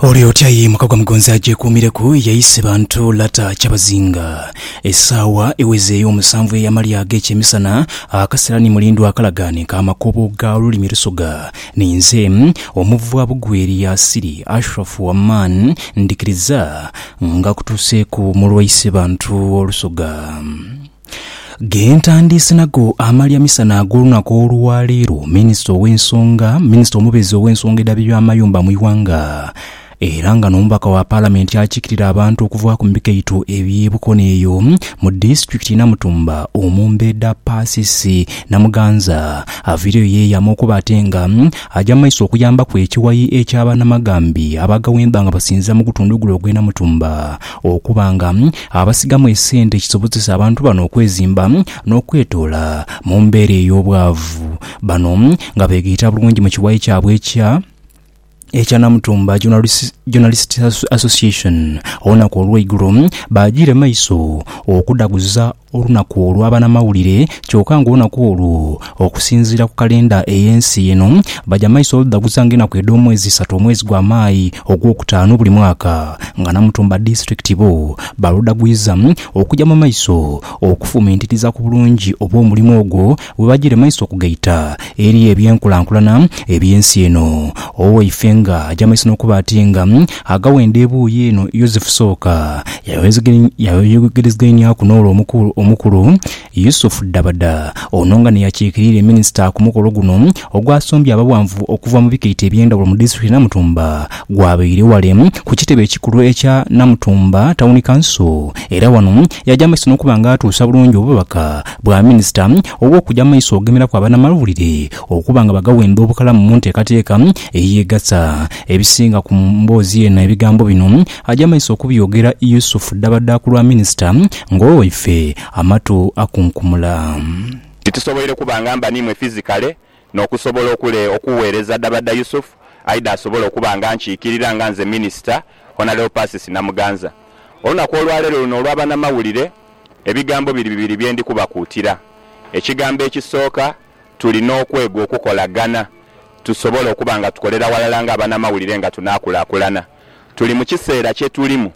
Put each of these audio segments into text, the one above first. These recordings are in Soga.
Oli otya ye mukagwa mugonzi agyekuumireku ye ise bantu lata kyabazinga. Esaawa eweze ey'omusanvu ey'amalya ag'ekyemisana, akasera ni mulindwa akalagaane ka makobo ga lulimi Lusoga. Ninze, omuvwa Bugweri Yasiri Ashrafu Aman ndhikiriza nga kutuuseeku mu lwa ise bantu Olusoga. Gentandiise nago amalya misana ag'olunaku olwa leero, minisita ow'ensonga minisita omubezi ow'ensonga edha by'amayumba mu ighanga era nga n'omubaka wa palamenti akiikirira abantu okuva ku mikaito eby'e Bukono eyo mu disitulikiti ye Namutumba omumbeedha Persis Namuganza avaireyo yeeyama okuba ate nga aja mu maiso okuyambaku ekiwayi eky'abanamagambi abagawemba nga basinziira mu gutundhu gule ogw'e Namutumba Okuba nga abasigamu esente kisobozesa abantu bano okwezimba n'okwetoola mu mbeera ey'obwavu. Bano nga beegaita bulungi mu kiwayi kyabwe ekya ekya Namutumba Journalists Association olunaku olweigulo, baajiire maiso okudhaguza olunaku olw'abanamawulire kyoka ng'olunaku olwo okusinziira ku kalenda ey'ensi eno baja maiso oludhaguza ng'enaku edh'omwezi isatu omwezi gwa Maayi ogw'okutaanu buli mwaka nga Namutumba Disitulikiti bo baludhagwiza okuja mu maiso okufumintiriza ku bulungi obw'omulimo ogwo bwe bajiire maiso okugaita eri eby'enkulankulana eby'ensi eno. Owaife nga aja maiso n'okuba ati nga aghawo enda ebuuyi eno Yosefu sooka yayogerezegaineaku n'ole omukulu, Yusuf Dabada, ono nga n'eyakiikirire minisita ku mukolo guno ogwasombye abaghanvu okuva mu bikaito eby'endhawulo mu disitulikiti ye Namutumba gwabaire ghale ku kitebe ekikulu ekya Namutumba Tawuni Kanso era wano Yaja mu maiso n'okuba nga atuusa bulungi obubaka bwa Minisita obw'okuja mu maiso ogemeeraku abanamawulire okuba nga bagawenda obukalamu mu nteekateeka ey'egatta. Ebisinga ku mboozi eno ebigambo bino aja mu maiso okubyogera Yusuf Dabada ku lwa Minisita ng'owo waife amatu akunkumula. Titusoboire kuba nga mba n'imwe fizikale, N'okusobola okule okuweereza Dabadda Yusuf, Aidah asobole okuba nga ankiikirira nga nze Minisita, Honalebo Persis Namuganza. Olunaku olwaleero luno olwa banamawulire, ebigambo biri bibiri bye ndi kubakuutira. Ekigambo ekisooka, tulina okwega okukolagana tusobole okuba nga tukolera ghalala nga abanamawulire nga tunaakulaakulana. Tuli mu kiseera kye tulimu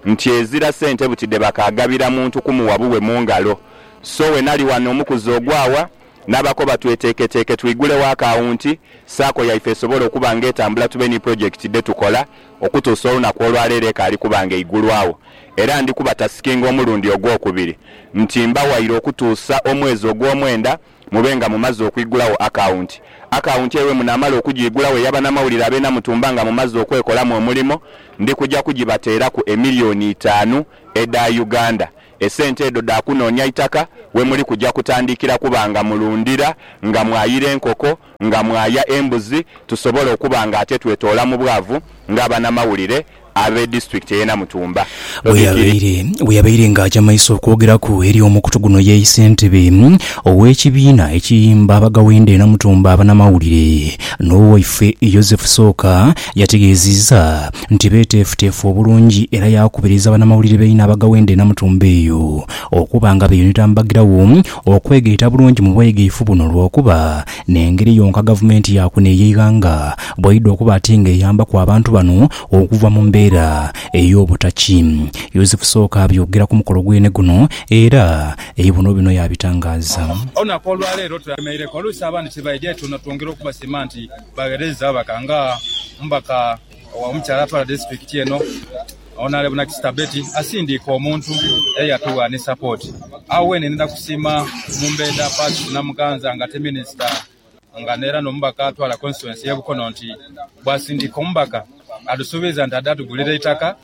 nti ezira sente buti dhe bakaagabira muntu kumuwa buwe mu ngalo. So wenali wano omukuzi ogwaawa, N'abakoba tweteeketeeke twigulewo akawunti Sacco yaife esobole okuba nga etambula tube ni pulojekiti dhe tukola okutuusa olunaku olwaleero ekaali kuba nga eigulwawo era ndi kubatasikinga omulundi ogwokubiri nti mba waire okutuusa omwezi ogwomwenda mube nga mumaze okwigulawo akawunti. Akawunti eyo bwemunaamala okugiigulawo eya banamawulire ab'e Namutumba nga mumaze okwekolamu omulimo ndi kuja kugibateeraku emiliyoni itaanu edha Uganda Esente edho dha kunoonia itaka we muli kuja kutandikira kuba nga mulundira, nga mwayira enkoko, nga mwaya embuzi tusobole okuba nga ate twetoola mu bwavu nga abanamawulire abe disitulikiti eye Namutumba. Bwe yabaire nga aja maiso okwogeraku eri omukutu guno yeise entebe ow'ekibiina ekiyimba abagawenda e Namutumba abanamawulire n'owaife Yozefu Sooka Yategeezezza nti beeteefuteefu obulungi era yaakubiriza banamawulire baine abaghawo enda enamutumba eyo okuba nga beeyunira mu bagirawo okwegaita bulungi mu bwegaifu buno lwokuba n'engeri yonka gavumenti ya kuno ey'eighanga bwaidha okuba ati nga eyambaku abantu bano okuva mu mbeera ey'obutaki. Yozefu Sooka abyogera ku mukolo gwene guno era eibuno bino yaabitangaaza. Olunaku olwaleero tulwemeire ku oluusi abandi tibaidha etuuno twongere okubasiima nti. Bagheereza ababaka nga omubaka owa omukyala atwala disitulikiti eno Onalebo Nakisita Betty asindiika omuntu era yatugha ni sapooti. Agho weene ndidha kusiima Mumbenda Patrick Namuganza nga ate minisita nga era n'omubaka atwala konsituwensi y'e Bukono nti bwasindiika omubaka adusuubiza nti adha tugulira eitaka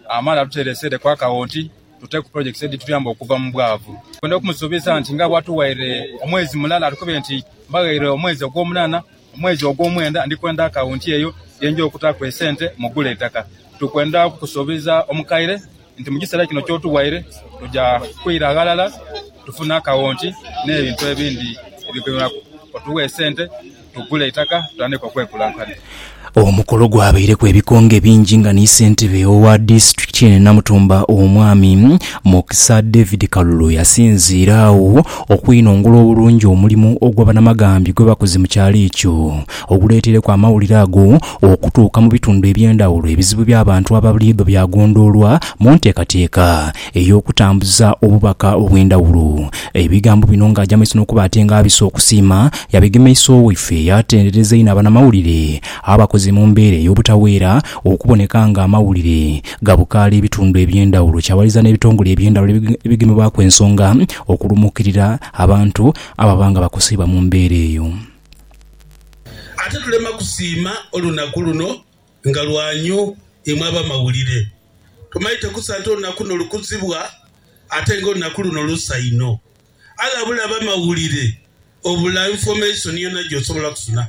amale aduteere eseere ku akawonti tuteeku pulojekiti edhituyamba okuva mu bwavu. Twendha okumusuubiza nti nga bwatughaire omwezi mulala atukube nti mbaghaire omwezi ogwomunaana. Mu mwezi ogw'omwenda ndi kwenda akawunti eyo ye nja okutaaku esente mu kugula eitaka. Tuli kwenda kukusuubiza omukaire nti mu kiseera kino ky'otughaire tuja kwira ghalala tufune akawunti n'ebintu ebindi ebigeneraku. Otuwe esente tugule eitaka tutandike okwekulakulanya. Omukolo gwabaireku ebikonge bingi nga ni Ssentebe owa Disitulikiti eno e Namutumba Omwami Mukisa David Kalulu yasinziira agho okwinongula obulungi omulimu ogwa banamagambi gwebakoze mu kyalo ekyo oguleetereku amawulire ago okutuuka mu bitundu eby'endhawulo ebizibu by'abantu aba buliidho byagondoolwa mu nteekateeka ey'okutambuza obubaka obw'endhawulo. Ebigambo bino ng'aja mu maiso n'okuba ate ng'abisa okusiima, yabigemesa Owaife yaatendereza inho abanamawulire abakoze mu mbeera ey'obutaweera okuboneka ng'amawulire gabukaala ebitundu eby'endhawulo kyawaliza n'ebitongole eby'endhawulo ebigemebwaku ensonga okulumuukirira abantu ababa nga bakoseibwa mu mbeera eyo. Ate tulema kusiima olunaku luno Nga lwanyo imwe abamawulire! Tumaite kusa nti olunaku luno lukuzibwa, ate nga olunaku luno lusa inho. Allah abula abamawulire obula information yona gyosobola kusuna.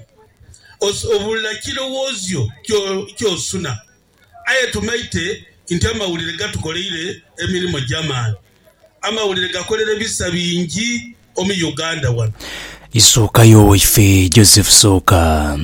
Obula kirowoozyo kyosuna. Aye tumaite nti amawulire gatukoleire emirimo gyamaani. Amawulire gakolere bisa bingi omu Uganda wano. Isookayo waife Joseph Sooka.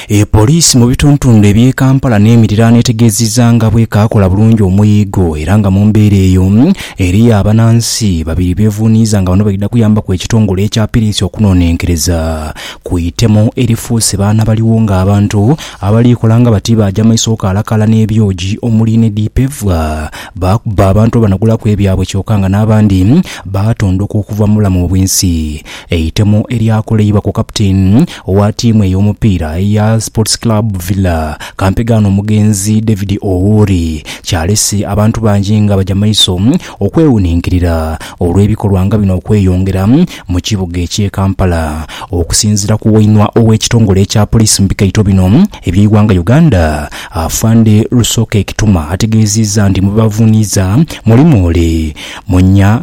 E poliisi mu bituntundu eby'e Kampala n'emiriraano etegeezizza nga bwekaakola bulungi omuyigo era nga mu mbeera eyo eriyo abanansi babiri bevuuniiza nga bano baidha kuyambaku ekitongole ekya piriisi okunonenkereza ku itemu erifuuse baana baliwo nga abantu abaliikola nga bati baaja maiso okalakaala n'ebyogi omuli ne dipevwa Baakuba abantu abanagulaku ebyabwe kyoka nga n'abandi baatondoka okuva mu bulamu obw'ensi. Eitemu eryakoleibwa ku kapiteeni owa ttiimu ey'omupiira eya Sports Club Villa, kampegaano omugenzi David Owori, kyalese abantu bangi nga baja maiso okwewuninkirira olw'ebikolwa nga bino okweyongera mu kibuga eky'e Kampala. Okusinziira ku wainwa ow'ekitongole ekya poliisi mu bikaito bino, Eby'eighanga Uganda, Afande Rusoke Kituma ategeeziizza nti mu bebavuuniiza mulimu ole Munya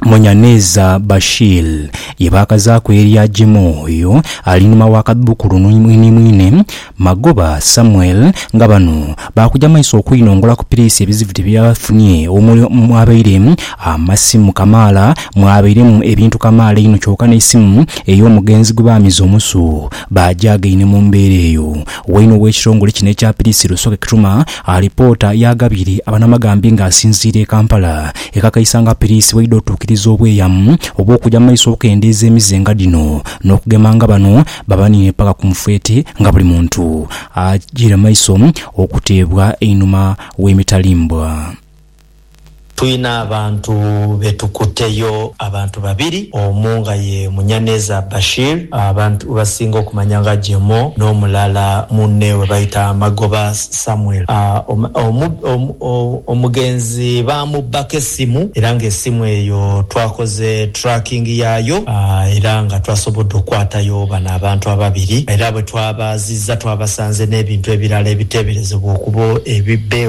Munyaneza Bashir ye baakazaaku erya Jemo oyo ali nhuma wa kadhubukulu ni mwinimwine Magoba Samuel nga bano baakuja maiso okwinongola ku piriisi ebizibu bye bafunye omuli omwabaire amasimu kamaala mwabairemu ebintu kamaala einho kyoka n'eisimu ey'omugenzi gwe baamiza omusu Baajaagaine mu mbeera eyo, waine ow'ekitongole kino ekya Pirisi Rusoke Kituma alipoota yaaghabiire abanamagambi nga asinziira e Kampala, ekakaisa nga Pirisi bwaidha otuukiriza obweyamu obw'okuja mu maiso okukendeeza emize nga dhino n'okugema nga bano babaniine paka ku mufeete nga buli muntu ajiire mu maiso okuteebwa einhuma w'emitalimbwa. Twina abantu be tukuteyo, abantu babiri, omu nga ye Munyaneza Bashir abantu webasinga okumanya nga Jemo n'omulala munne webayita Magoba Samuel. Omugenzi baamubbako esimu era ng'esimu eyo twakoze tracking yaayo era nga twasobodde okukwatayo bano abantu ababiri era bwetwabaazizza twabasanze n'ebintu ebirala ebiteeberezebwa okuba ebibbe.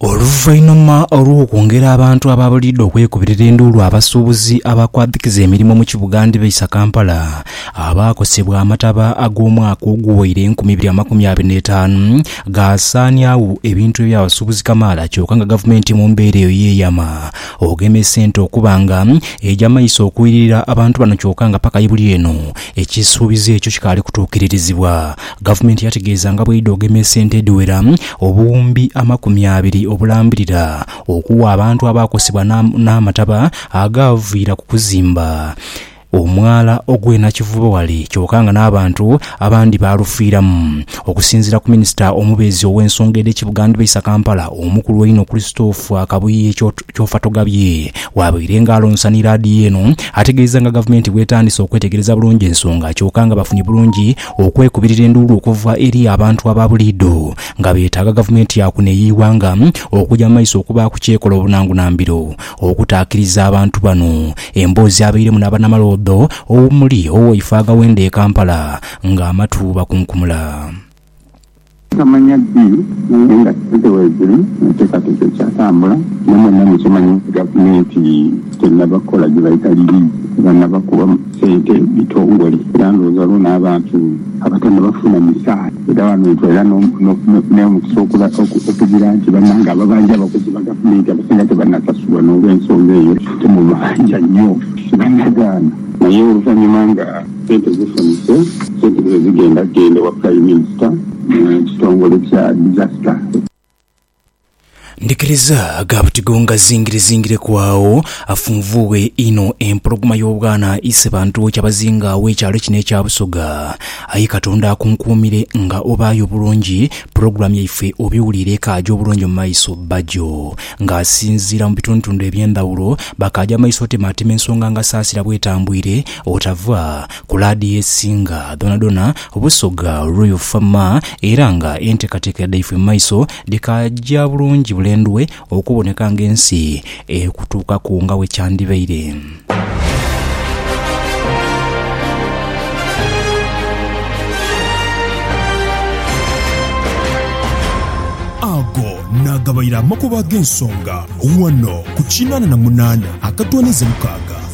Oluvainhuma olw'okwongera abantu ababuliidho okwekubirira enduulu abasuubuzi abakwadhikiza emirimo mu kibuga ndhibaisa Kampala abaakosebwa amataba ag'omwaka oguwaire enkumi ibiri amakumi abiri n'etaanu gaasaaniagho ebintu eby'abasuubuzi kamaala kyoka nga gavumenti mu mbeera eyo yeeyama ogema esente okuba nga egya maiso okwirira abantu bano kyoka nga paka ye buli eno Ekisuubizo ekyo kikaali kutuukiririzibwa. Gavumenti yategeeza nga bw'eidha ogema esente edhiwera obuwumbi amakumi abiri obulambirira okuwa abantu abaakosebwa n'amataba agaaviira ku kuzimba omwala ogw'e Nakivubo wale kyoka nga n'abantu abandi baalufiiramu. Okusinziira ku minisita omubeezi ow'ensonga edh'e Kibugandhba Isa Kampala, omukulu einho Christopher Kabuye, Kyofa togabye. Wabaire nga alonsanhi laadiyo eno ategeeza nga gavumenti bwetandise okwetegereza bulungi ensonga kyoka nga bafunye bulungi okwekubirira enduulu okuva eri abantu aba buliidho nga betaaga gavumenti ya kuno eyeighanga okuja mu maiso okubaaku kyekola obunangunambiro okutaakiriza abantu bano. Emboozi abairemu n'abanamaloodho omuli Owoifa agaweenda e Kampala nga amatu bakunkumula. Nkamanya ddi naye nga sente weedhiri enteekateeka ekyatambula. Naye mwenna mukimanye nti Gavumenti tenaba kukola gye bayita liliizi, tebanaba kuwa sente bitongole era ndhowooza lwo n'abantu abatanaba funa misaala. Era wano ntwala n'omukisa okugira nti bannange ababanja abakozi ba Gavumenti abasinga tebanasasulwa n'olwensonga eyo, temubanja nnyo, tibanagaana naye oluvannyuma nga. Sente zifunise sente dhino zigenda genda ewa Prime Minister mu kitongole kya Disaster. Ndhikiriza ga buti gongazingire zingireku agho afunvuughe inho empologoma y'obwana ise bantu kyabazinga agho ekyalo kino ekya Busoga. Aye Katonda akunkuumire nga obaayo bulungi pulogulaamu yaife obiwuliire ekaaja obulungi mu maiso. Bbajo nga asinziira mu bitundutundu eby'endhawulo bakaaja mu maiso otemaatema ensonga nga Saasira bwetambwire Otava ku laadiyo esinga dhonadhona Busoga Royal Fama era nga entekateka dhaifwe mumaiso dhikaja bulungi bulendwe okuboneka nga ensi ekutuukaku nga wekyandibaire. Ago nagabaire amakubo agensonga ghano ku kinana na munana akatwanize mukaaga.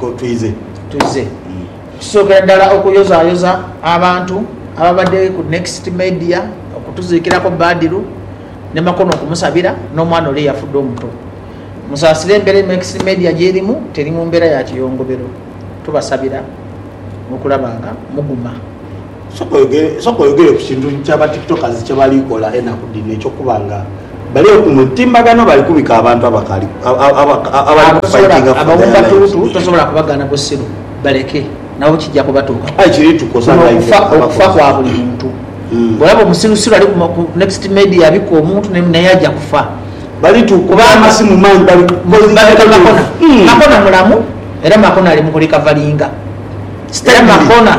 ko twidhe. Twidhe tusookera ddala okuyozaayoza abantu ababadde ku Next Media okutuziikiraku Badiru ne Makono okumusabira n'omwana ole eyafudde omuto. Musaasire embeera Next Media gy'erimu teri mu mbeera ya kiyongobero. Tubasabira okulaba nga muguma. Sooka oyogere ku kintu kya ba tiktokers kye bali kola enaku dhino eky'okuba nga bali eyo ku mutimbagano bali kubika abantu abakali kufaitinga for their lives. Abo batuutu tosobola kubagaana busiru, baleke nabo kija kubatuukaku. Kuno okufa kwa buli muntu. Bw'olaba omusirusiru ali ku next media abika omuntu naye aja kufa. Balitukuba amasimu man bali kukozesa ebilevu. Makona mulamu era Makona ali mu kulikavalinga. Makona.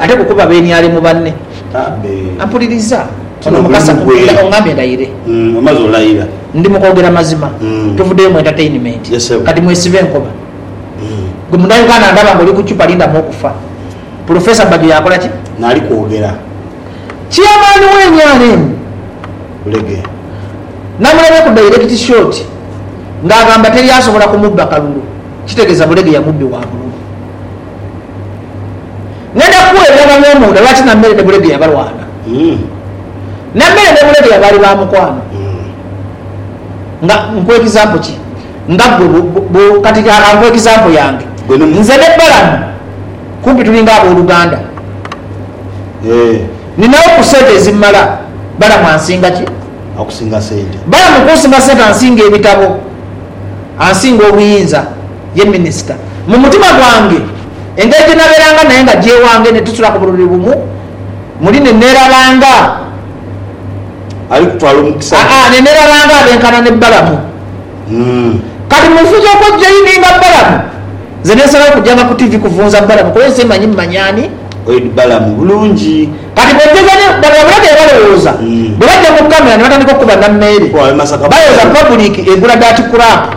Ate ku kuba beniale mu banne. Ampuliriza, ono Mukasa Mugwira ongambye ndayire. Ndi mu kwogera mazima. Tuvuddeyo mu entertainment. Kati mwesibe enkoba. Gwe Munauganda ndaba ng'oli ku ccupa lindamu okufa. Pulofeesa Bbajo yakola ki? Naali kwogera. Chairman wa nrm namulabye ku direct shot ng'agamba teri asobola kumubba kalulu. Kitegeeza Buleghe yamubbi wa bululu. Ngenda kukula eby'amanhwa mu nda, lwaki Nammere ne Bulegeya balwana? Nammere ne Bulegeya baali ba mukwano. Nga nkuwa ekizampo ki? Nga ggwe bu, bu, bu, kati ka, ka nkuwe ekizampo yange. Nze ne Balamu kumpi tulinga ab'oluganda. Nninawo ku ssente ezimmala. Balamu ansinga ki? Akusinga ssente. Balamu kunsinga ssente, ansinga ebitabo, ansinga obuyinza. Ye minisita mu mutima gwange. Engeri gye nabeeranga naye nga gyewange ne tusula ku buliri bumu muli ne neerabanga. Ali kutwala omukisa gwe. Aa, ne neerabanga abenkana ne Balamu. Kati mu nsi z'okwejoyininga Balamu, nze ne nsalawo kujanga ku tivi kuvunza Balamu kuba ensi emanyi mmanyi ani. Oid Balamu bulungi. Kati bwe njeza ne babula kye balowooza bwe bajja mu kkamera ne batandika okukuba nammeere. Bayoza pabuliki egula daati kulapu.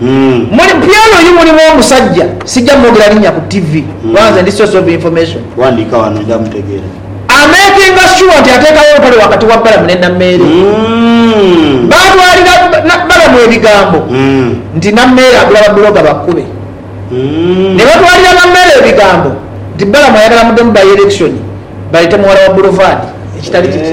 Muli piano oyo mulimu omusajja sijja mwogera linnya ku TV kubanga nze ndi source of information. Wandiika wano ojja mutegeera. Amekinga sure nti ateekawo olutalo wakati wa Balamu ne Nameere. Baatwalira Balamu ebigambo nti Nameere agula babuloga bakkube. Ne batwalira Nameere ebigambo nti Balamu ayagala muddemu by-election baleete muwala wa Bulovaadi, ekitali kiti.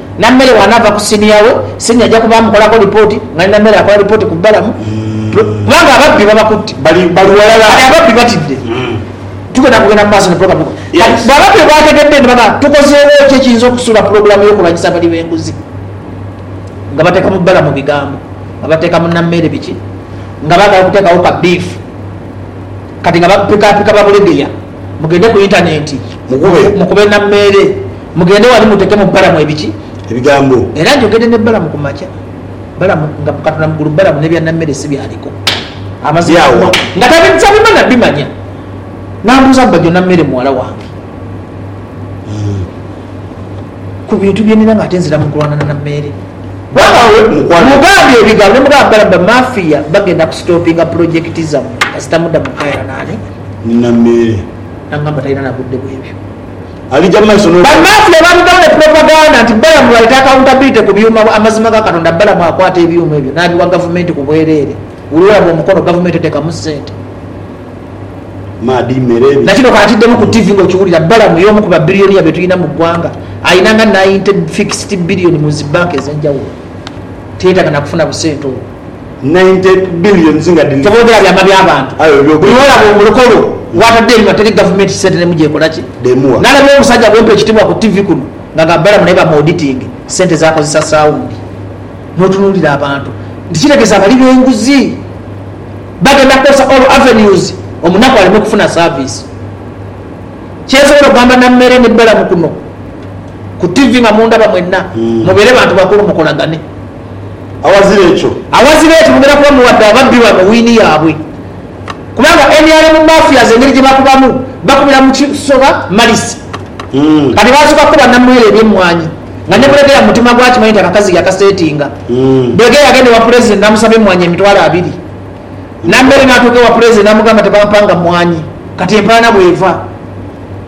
Nammere bw'anaava ku siniya we, siniya aja kuba amukolako lipooti nga ni Nammere akola lipooti ku Balamu kubanga ababbi babakutte. Kati ababbi batidde. Tugenda kugenda mu maaso ne pulogulaamu ekola. Kati bw'ababbi bwe baategedde ne bagamba, tukozeewo ki ekiyinza okusuula pulogulaamu y'okulwanyisa abalyi b'enguzi? Nga bateeka mu Balamu bigambo, nga bateeka mu Nammere biki, nga baagala okuteekawo ka bbiifu kati nga bapikaapika Babulegeya. Mugende ku yintanenti, mukube na meere, mugende wali mutekemu Balamu ebiki? Ebigambo. Era njogedde ne Balamu ku makya, Balamu, nga Katonda mukulu, Balamu n'ebya Nammere si by'aliko. Amazima Byawa? nga tabimanya bimanya. N'ambuuza mbu, Bajjo Nammere muwala wange? Ku bintu bye nnina ng'ate nzira mu kulwana na Nammere. Bwaba we mukwano. Mugambye ebigambo ne mugamba Balamu, Bamafiya bagenda kusitoopinga pulojekiti zammwe kasita mudda mu kukaayana n'ani? nina meere. N'angamba talina na budde bw'ebyo. Alija mu maiso n'okuba. Bannamafia baalugamu ne propaganda nti Balamu baleeta accountability ku byuuma bwa Amazima ga Katonda Balamu akwata ebyuuma ebyo n'abiwa gavumenti ku bwereere. Wuli wolaba omukono gavumenti eteekamu ssente. Maadhi, meere, bi. Na kino k'atiddemu ku ttivi ng'okiwulira, Balamu y'omu ku babilioniya be tulina mu ggwanga. Alina nga ninety fixed billion mu zi banka ez'enjawulo. Teyetaaga na kufuna busente obwo. 90 billions nga dhiri. Teboogera byama bya bantu. Aye byo. Buli wolaba omulokolo gwatadde enhwa teri gavumenti sente nemu gyekola ki? Dhemuwa. Nalaba omusaja gwempa ekitibwa ku TV kuno nga nga balamu naye bamu auditinge sente zakozesa saundi. Notunulira abantu nti kitegeza bali benguzi. Bagenda kukozesa all avenues omunaku aleme kufuna service. Kyensobola okugamba Nammere ne Balamu kuno ku TV nga mundaba mwena. Mubeere bantu bakulu mukolagane. Aghazira ekyo. Aghazira ekyo mugenda kuba muwadde ababbi bano wiini yaabwe. Kubanga nrm mafias engeri gye bakubamu, bakubira mu kisoba malisi. Kati baasooka kukuba Namwera eby'emmwanyi nga ne Bulegeya mu mutima gwe akimanyi nti akakazi yakaseetinga. Bulegeya yagenda ewa Pulezidenti n'amusaba emmwanyi emitwalo abiri. Nambere n'atuuka ewa Pulezidenti n'amugamba tebampanga mmwanyi. Kati empaana bw'eva.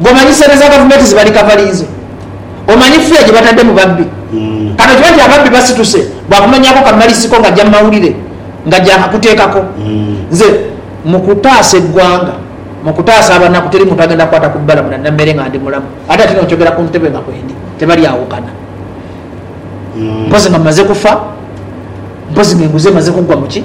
Gwe omanyi sente za gavumenti zebali kavaliinze? Omanyi fee gyebatadde mu babbi? Kati okimanyi nti ababbi basituse bwakunonyaako kamalisiko nga ajja mu mawulire nga gyakakuteekako? Nze mu kutaasa eggwanga, mu kutaasa abanaku teri muntu agenda kukwata ku bbalamu na Nameere nga ndi mulamu ate ati no nkyogera ku ntebe nga kwendi. Tebalyawukana. Mpozi nga mmaze kufa? Mpozi nga enguzi emaze kuggwa mu ki?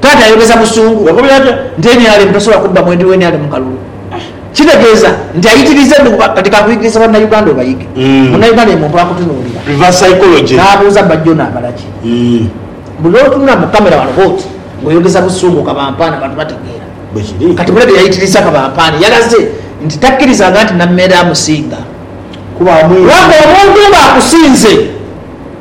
Taata ayogeza busungu bw'akomerera atyo nti nrm tasobola kubba mwendi wa nrm kalulu. Kitegeeza nti ayitiriza endhuba. Kati kankuyigirize Bannayuganda obayige. Munnayuganda buli muntu akutunuulira n'abuuza bba John abala ki? Buli lw'otunula mu kkamera wano bw'oti ng'oyogeza busungu Kabampaane abantu bategeera. Kati mule bye yayitirizza Kabampaane yalaze nti takkirizanga nti Nameere amusinga. Kuba omuntu ng'akusinze.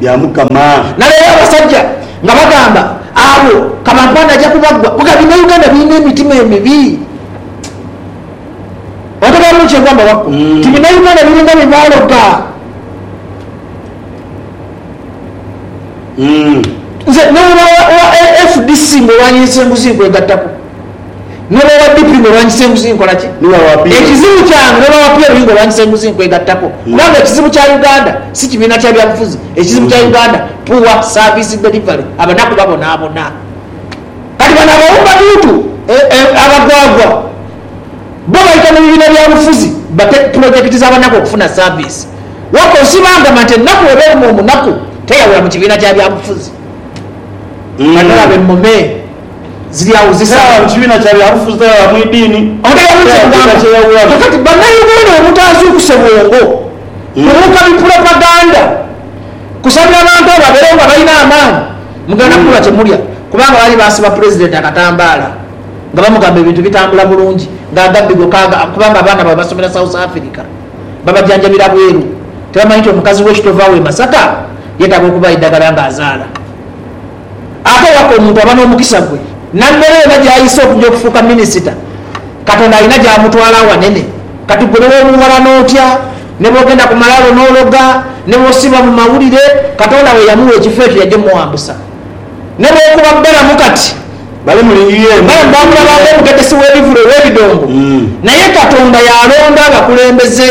bya Mukama. Naleero abasajja nga bagamba abo kabampande aja kubagwa kuga bina uganda bilina emitima emibi otegera bulungi kyengamba wakku nti bina uganda bilinga byebaloga nze newulira owa fdc mulwanyi nze senguzi nkwegattako. N'oba wa DP ng'olwanyisa enguzi nkola ki? Ekizibu kyange n'oba wa PLU ng'olwanyisa enguzi nkwegattako kubanga ekizibu kya Uganda si kibiina kya byabufuzi, ekizibu kya Uganda poor service delivery, abanaku babonaabona. Kati bano abawumba bintu, abagwagwa bo baita mu bibiina bya bufuzi bate pulojekiti z'abanaku okufuna service. Wabula osiibangama nti ennaku bw'eba eruma omunaku teyawula mu kibiina kya byabufuzi. Bano olaba emmome. ziri agho zisala. Mu kibiina kya byabufuzi teri agha mu idiini, Omutegeera kye ngamba? Kakati Bannauganda obutaazuukuse bwongo kubuuka bipulopaganda kusabira bantu abo babeerewo nga balina amaani, mugenda kubulwa kye mulya kubanga baali baasiba Pulezidenti akatambaala nga bamugamba ebintu bitambula bulungi nga agabbi goka kubanga abaana baabwe basomera South Africa babajanjabira bweru tebamanyi nti omukazi we Kitove awo e Masaka yetaaga okubawa eddagala ng'azaala. Ate waka omuntu aba n'omukisa gwe nambera yona gyayisa okuja okufuuka minisita. Katonda alina gyamutwala aghanene. Kati gwe nebwobuwalana otya, nebwogenda ku malaalo n'ologa, nebwosiiba mu mawulire, Katonda we yamuwa ekifo ekyo yaja omuwambusa. Nebwokuba bbalamu kati. Bali muli UN Balamu baamulaba nga omutegesi w'ebivule ow'ebidongo. Naye Katonda y'alonda abakulembeze.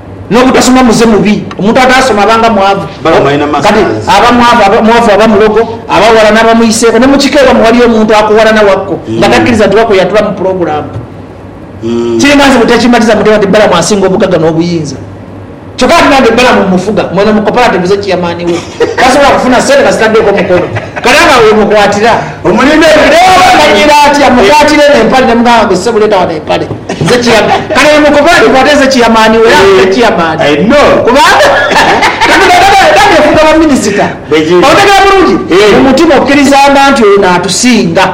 N'obutasoma muze mubi. Omuntu ataasoma aba nga mwavu. Kati aba mwavu, mwavu aba mulogo, abaghala n'abamwiiseeko. Ne mu kika ewammwe ghaliyo omuntu akughalana wako nga takkiriza nti wako yatula mu pulogulaamu. Kiri nga nze bwe tekimmatiza muteeba nti Balamu asinga obugagga n'obuyinza. Kyokka ate nange Balamu mmufuga. Mweno mu kopalativu ze ciyamaani we. tasobola kufuna sente nga zitaddeeko mukono. Kale agho we mukwatira omulimba ebiro byona. Oba manyira atya? Mukwatire n'empale ne mugamba mbu, Ssebo leeta wano empale. Nze Chairman. Kale bwe mukoba nti kwata nze Chairman wo era nfune Chairman. Kubanga tetugenda eda neefuga baminisita. Otegera bulungi? Mu mutima okkirizanga nti ono atusinga.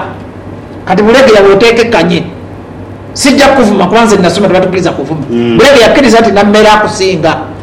Kati Bulegeya bw'oteekekkanye, sijja kukuvuma kuba nze nasoma tebatukiriza kuvuma. Bulegeya akkiriza nti Nammere akusinga.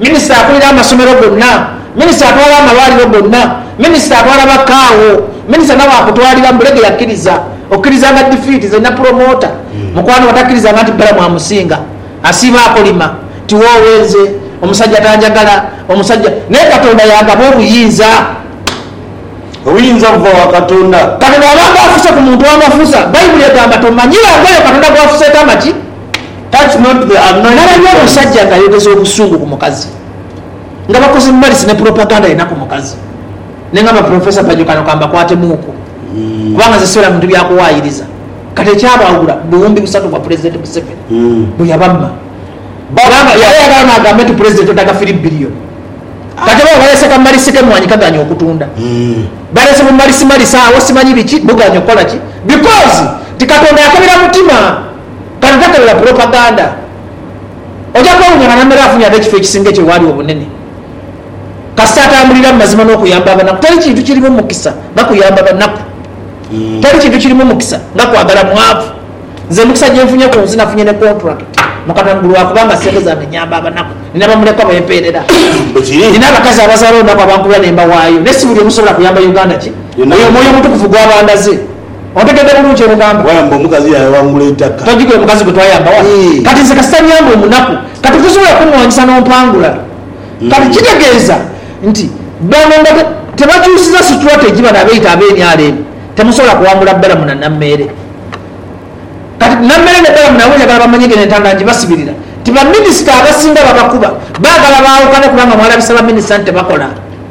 Minisita akulira amasomero gonna, Minisita atwala amalwaliro gonna, Minisita atwala ba Kaawo, Minisita nawe akutwalira mbu lege yakiriza. Okirizanga defeat zena promoter mukwano batakirizanga nti Balamu amusinga. Asiiba akolima nti woowe nze omusajja tanjagala, omusajja. Naye Katonda yagaba obuyinza. Obuyinza buva wa Katonda. Kati bwaba nga afuse ku muntu amafusa, Baibuli egamba tomanyira ngoyo Katonda gwafuseeko amaki. Ghalabye omusajja nga ayogeza obusungu ku mukazi nga bakoze malisi ne propaganda yena ku mukazi ne ngamba Professor Pajo kano kambakwatemuuku kubanga nze sibeera bintu bya kuwaayiriza kati ekyabaawula buwumbi busatu bwa Pulezidenti Museveni bwe yabamma era yaghaana aghambe nti Pulezidenti odaga firi billion kati bo baleese ka malisi ke mwanyi kagaanye okutunda baleese bu malisi malisi agho simanyi biki bugaanye okukola ki because nti Katonda yakebera mutima. Kano tokebera pulopaganda. Oja kwewuunya nga Nammere afunye ate ekifo ekisinga ekyo waali obunene. Kasita atambulira mu mazima n'okuyamba abanaku. Teri kintu kirimu mukisa nga kuyamba banaku. Teri kintu kirimu mukisa nga kwagala mwavu. Nze emikisa gye nfunye ku nsi nafunye ne kontulakiti mu Katanga lwa kuba nga ssente zange nnyamba abanaku. Nnina bamulekwa be mpeerera. Nnina abakazi abazaala olunaku abankubira ne mbawaayo. Naye si buli omu nsobola kuyamba Uganda gye. Oyo Omwoyo Omutukuvu gw'aba andaze. Ontegedde bulungi kye ghogamba? Wayamba omukazi yayawangula eitakka. Tojighe mukazi gwe twayamba wano. Kati nze kasita nyamba omunaku, kati tosobola kunwanyisa n'ompangula. Kati kitegeeza nti bano nga tebakyusiza strategy bano abeeyita aba nrm temusobola kuwangula Balamu na Nameere. Kati Nameere ne Balamu nabo njagala bamanye ng'eno entanda ngibasibirira nti baminisita abasinga babakuba. Baagala baawukane kubanga mwalabisa baminisita nti tebakola.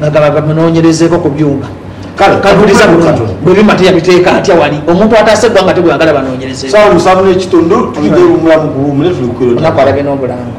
nga gaba gamunoonyerezeeko ku byuma. Kale kabuuliza buti, Bwe bimata yabiteeka atya wali omuntu ataasa eggwanga ate bw'ayagala banoonyerezeeko? Omunaku alabye n'obulango.